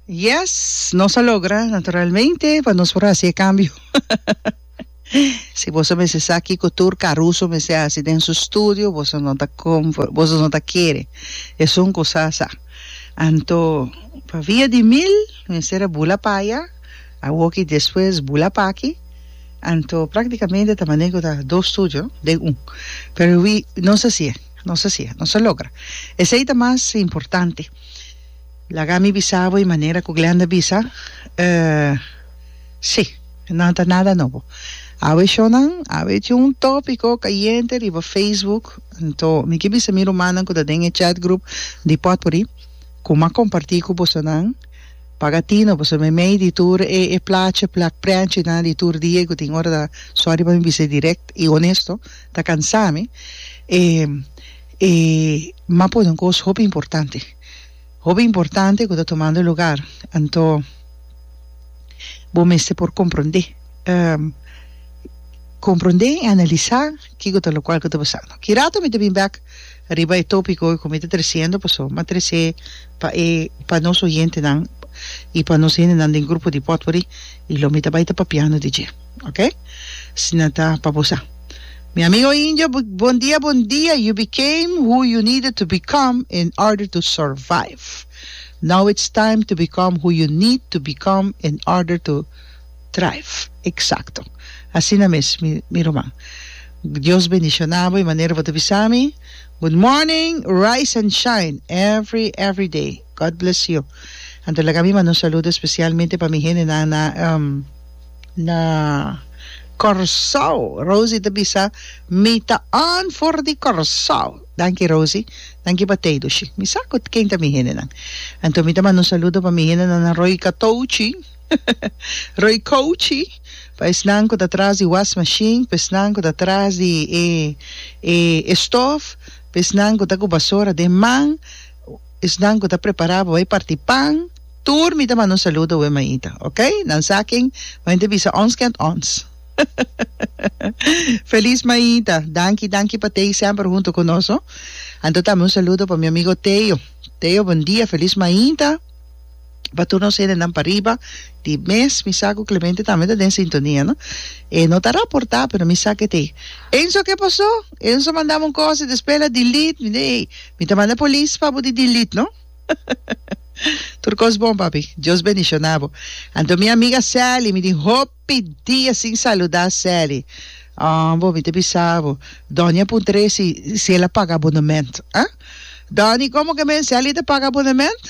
Yes, nos a logra naturalmente pa nos por hasi e cambio. si boso mester sa kiko tur caruso mester hasi den su studio, boso no ta comfort, boso no ta kere esun cosa sa. Anto pa via di mil mester a bula paya, awoki despues bula paki, anto practicamente ta mane ku ta dos studio den un. Pero wi nos a si'e, nos a si'e, nos a logra. Esei ta mas importante. Laga mi bisa bo e manera cu Glenda bisa, si, nan ta nada nobo. Awe shownan, awe tin un topico cayente riba Facebook, anto mi ke bisa mi rumannan cu ta den e chat group di Potpourri cu m'a comparti cu bosonan, paga tino boso meimei di tur e e plaatje, plak, preantjenan di tur dia cu tin ora ta, sorry pa mi bisa e direct y honesto, ta cansa mi, e e m'a pone un cos hopi importante. hopi importante ku ta tomando lugar, anto bo mester por komprondé komprondé i analisá kiko ta lokual ku ta pasando. Ki rato mi ta bin bèk riba e tópiko ku mi ta tresiendo paso mi a trese pa e pa nos oyentenan i pa nos hendenan den grupo di pòtpori i lo mi ta bai ta papiando di dje. Ok Sina ta pa bo sa. Mi amigo indio bon dia bon dia you became who you needed to become in order to survive now it's time to become who you need to become in order to thrive exacto asina mes mi ruman Dios bendiciona bo y manera bo ta bisa mi good morning rise and shine every every day. God bless you anto laga mi manda un saludo especialmente pa mi hendenan na na Corsou Rosie ta bisa mi ta on for di Corsou danki Rosie danki pa tey dushi mi sa cu ken ta mi hendenan anto mi ta manda un saludo pa mi hendenan na Roy Catouchi Roy Couchi pa esnan cu ta tras di wash machine pa esnan cu ta tras di e e e stof pa esnan cu ta cu basora den man esnan cu ta prepará pa bai parti pan, tur mi ta manda un saludo wen maita, ok? Nan sa ken wen ta bisa ons kend ons. Feliz maita, danki danki pa tei semper hunto cu nos ho. Anto tambe un saludo pa mi amigo Teo, Teo bon dia, feliz maita. pa tur nos hendenan pariba di mes mi sa cu Clemente tambe ta den sintonia no e no ta raporta pero mi sa kete Enzo ke paso Enzo mandami un cos y despues ela delete mi de ey mi ta manda police pa bo di delete no tur cos bon papi Dios bendicionabo anto mi amiga Sally mi tin hoop. pidia sin saluda Sally ah bo mi ta bisa bo Donny a puntra e si si el a paga abonnement ah Donny como que men Sally ta paga abonnement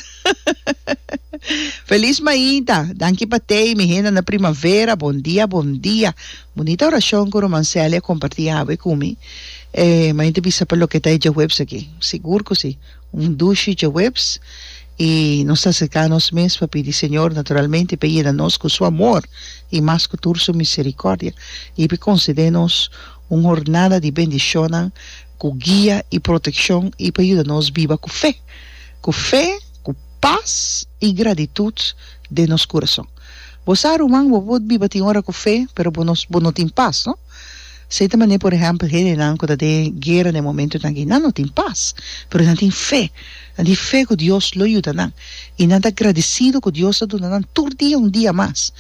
Feliz mainta danki pa tei mi henda na primavera bon dia bon dia bunita oracion cu ruman Sally a comparti awe cu mi eh mainta bisa pa loke ta e djaweps aki sigur cu si. Un dushi djaweps i nos ta aserká nos mes pa pidi Señor naturalmente p'e yena nos ku Su amor i mas ku tur Su miserikòrdia i p'e konsedé nos un hornada di bendishonnan ku guia i protekshon i pa yuda nos biba ku fe, ku fe, ku pas i gratitut den nos kurason. Bo sa, ruman, bo por biba tin ora ku fe, pero bo no tin pas. Esei ta manera, por ehèmpel, hendenan ku ta den guera den momentunan aki, nan no tin pas, pero nan tin fe. Nan tin fe ku Dios lo yuda nan. I nan ta gradisidu ku Dios a duna nan tur dia un dia mas.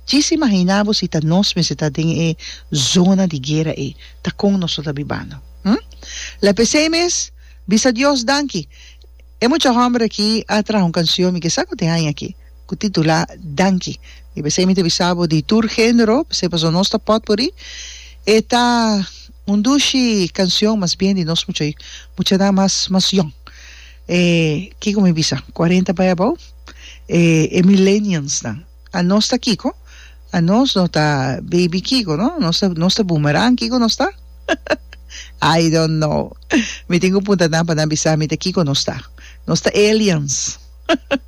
Djis imaginá bo si ta nos mester ta den e zona di guera ei, ta kon nos lo ta bibando? Hm? Lèp esei mes, bisa Dios danki. E mucha hòmber akí a traha un kansion mi kisa ku tin aña akí, ku titulá Danki. I p'esei mi ta bisa bo di tur género, p'esei pasobra nos ta pòtpuri. E ta un dushi kansion mas bien di nos mucha muchanan mas mas yòn. E kiko mi bisa? Kuarenta bai abou? E e millenniumsnan. A nos ta kiko? A nos no ta baby kiko no? Nos ta nos ta boomerang kiko nos ta? I don't know. Mi tin ku punta nan pa nan bisa mi ta kiko nos ta. Nos ta aliens.